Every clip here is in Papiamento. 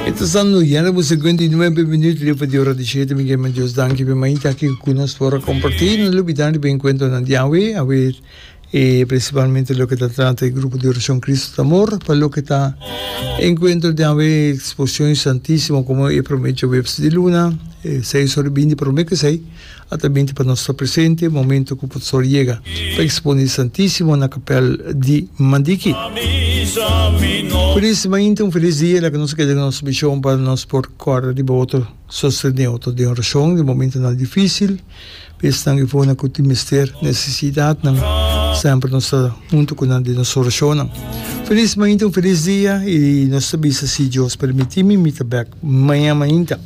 E ta sando ya na bo segunta i nuebe minut riba di ora di shete. Mi ke man Dios danki pe mainta aki ku nos por a kompartí. No lubidá riba e enkuentronan di awe, awe e prinsipalmente loke ta trata e grupo di orashon Kristu ta amor. Pa loke ta e enkuentro di awe, e eksposion Santísimo, komo e promé jueves di luna, e seis ora bini promé kusei. A ta binti pa nos ta presente momento cu Potsdor yega pa expone di Santisimo na capel di Mandiki. Cu nes mainta un feliz dia laga nos keda den nos mision pa nos por corda riba otro, sostene otro den oracion den momentonan dificil, besnan y fonan cu tin mester necesidadnan. Semper nos ta hunto cu nan den nos oracionnan. Feliz mainta un feliz dia y nos ta bisa si Dios permiti mi mi ta bek maña mainta.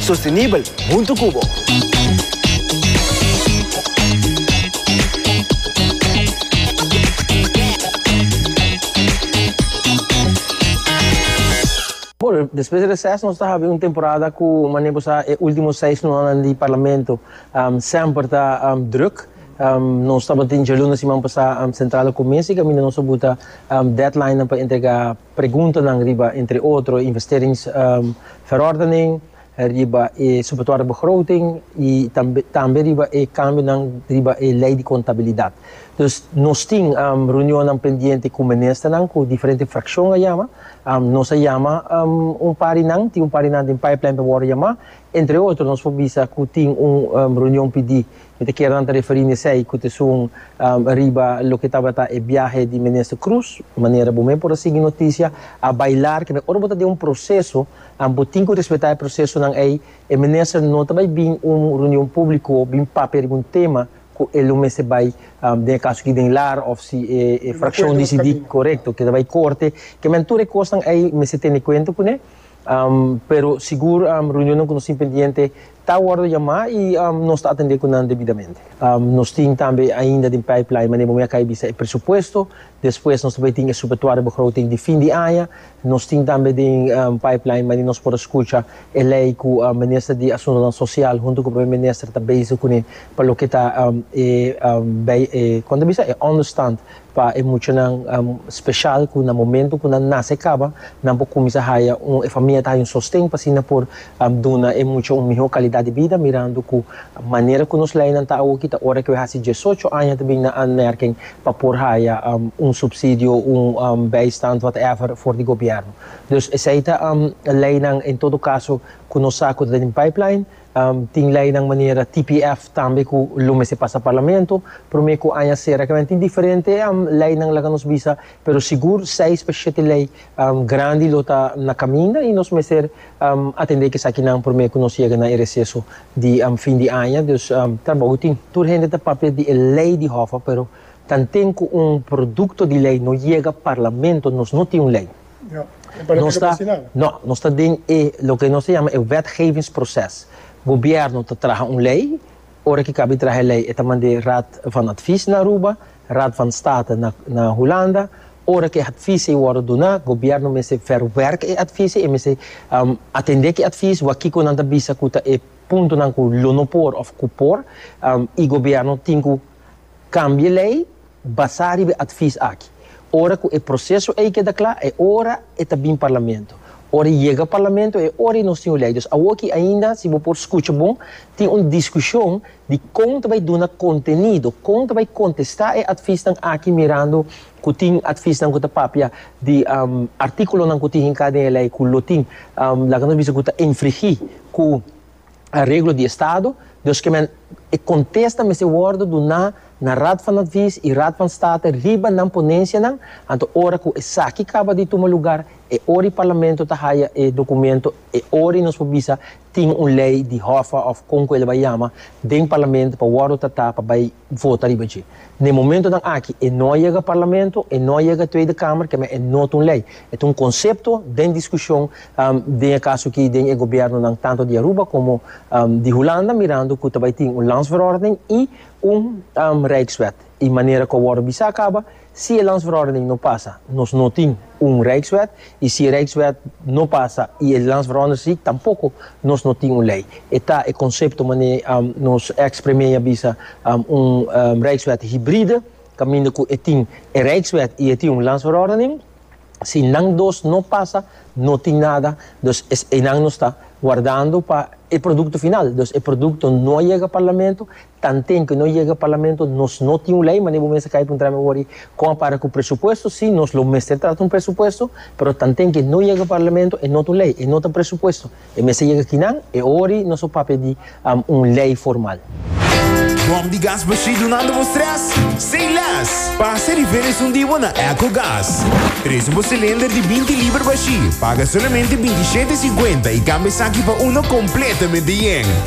Sostenibel huntu cu bo. Bueno, despues di reces nos ta habi un temporada cu manera bo sa e ultimo seis lunasnan di Parlamento semper ta druk. Nos tabatin djalunes siman pasa centralnan cuminsa y caminda nos a buta deadlinenan pa entrega Preguntanan riba entre otro e investerings verordening, riba e suportoria begroting y tambe riba e cambionan riba e ley di contabilidad. Dus nos tin reunionnan pendiente cu Ministernan cu diferente fraccion a yama. Nos a yama un par di nan, tin un par di nan den pipeline pa worde yama. Entre otro nos por bisa cu tin un reunion pidi Mi ta kier nan ta referí na esei ku ta esun riba loke tabata e biahe di Minister Croes, manera bo mei por a sigui notisia, a bai lar ke ora bo ta den un proseso, bo tin ku respetá e prosesonan ei, e Minister no ta bai bin un reunion públiko bin papia riba un tema ku e lo mester bai den e kaso aki den lar òf si e frakshon disidí korekto ke ta bai korte, kemen tur e kosnan ei mester tene kuenta kuné. Pero sigur reunionnan ku nos tin pendiente ta wòrdu yamá i nos ta atendé ku nan debidamente. Nos tin tambe ainda den pipeline manera bo mira akai bisa e presupuesto, despues nos ta bai tin e subetuario begroting di fin di aña, nos tin tambe den pipeline manera nos por a skucha e lei ku Minister di Asuntonan Sosial huntu ku Prome Minister ta bezig kuné pa loke ta e bai e kon ta bisa e ònderstand Pa e muchanan special cu na momento cu nan nace caba, nan por cuminsa haya un, e famia ta haya un sosten pa asina por duna e mucha un miho calidad di bida, mirando cu manera cu nos leynan ta awoki ta ora cu e haci diesocho aña ta bin na aanmerking pa por haya un subsidio, un bijstand, whatever, for di gobierno. Dus esey ta leynan en todo caso cu nos sa cu ta den pipeline. Tin leinan manera TPF tambe ku lo mester pasa Parlamento. Promé ku aña sera kemen tin diferente leinan laga nos bisa, pero sigur seis pa shete lei grandi lo ta na kaminda i nos mester atendé ke sakinan promé ku nos yega na e reseso di fin di aña. Dus trabou tin. Tur hende ta papia di e lei di Hoffa, pero tanten ku un produkto di lei no yega Parlamento nos no tin un lei. Nos ta, no, nos ta den e loke nos ta yama e wetgevingsproces. Gobièrnu ta traha un lei, ora ki kabi traha e lei e ta mand'é Raad van Advies na Aruba, Raad van State na na Hulanda. Ora ki advies'ei wòrdu duná, gobièrnu mester verwerk e advies'ei, e mester atendé ki advies, wak kiko nan ta bisa ku ta e puntonan ku lo no por òf ku por, i gobièrnu tin ku kambia e lei. Basá riba e atvis aki, ora ku e proseso ei keda kla, e ora e ta bin parlamento. Ora e yega parlamento, e ora ei nos tin un lei. Dus awoki ainda, si bo por skucha bon, tin un diskushon di kon ta bai duna kontenido, kon ta bai kontestá e atvisnan aki mirando ku tin atvisnan ku ta papia di artíkulonan ku tin hinká den e lei ku lo tin, laga nos bisa ku ta infringí ku. areglo di estado, dus ke men e kontesta mester wòrdu duná na Raad van Advies i Raad van State riba nan ponensianan, anto ora ku esaki kaba di tuma lugar, e ori Parlamento ta haya e dokumento, e ori nos por bisa tin un lei di Hoffa òf kon ku el a bai yama den Parlamento pa wòrdu tratá pa bai vota riba dje. Na e momentonan aki e no a yega Parlamento, e no a yega Tweede Kamer, kemey e no ta un lei. E ta un konsepto den diskushon den e kaso aki den e gobièrnunan tantu di Aruba komo di Hulanda mirando ku ta bai tin un Landsverordening i un Rijkswet. I manera ku a wòrdu bisa kaba Si e Landsverordening no pasa, nos no tin un Rijkswet, i si e Rijkswet no pasa i e Landsverordersriek tampoko, nos no tin un lei. E ta e konsepto manera nos eks Premee a bisa, un Rijkswet hibride, kaminda ku e tin e Rijkswet i e tin un Landsverordening. Si nan dos no pasa, no tin nada, dus es einan nos ta wardando pa e produkto final. Dus e produkto no a yega Parlamento, Tan tempu no yega parlamento nos no tin un ley, mane bo mester kai puntra mi awor ei, kon a para ku presupuesto? Si, nos lo mester trata un presupuesto, pero tan tempu ei no yega parlamento e no ta un ley, e no ta presupuesto. E mester yega kinan? E awor ei nos a papia di un ley formal. Bòm di gas bashí dunando bo strès? Say less! Pasa riba e resondí bo na Ecogas. Trese bo silinder di binti liber bashí, paga solamente binti shete e siguenta i kambia esaki pa uno kompletamente yen.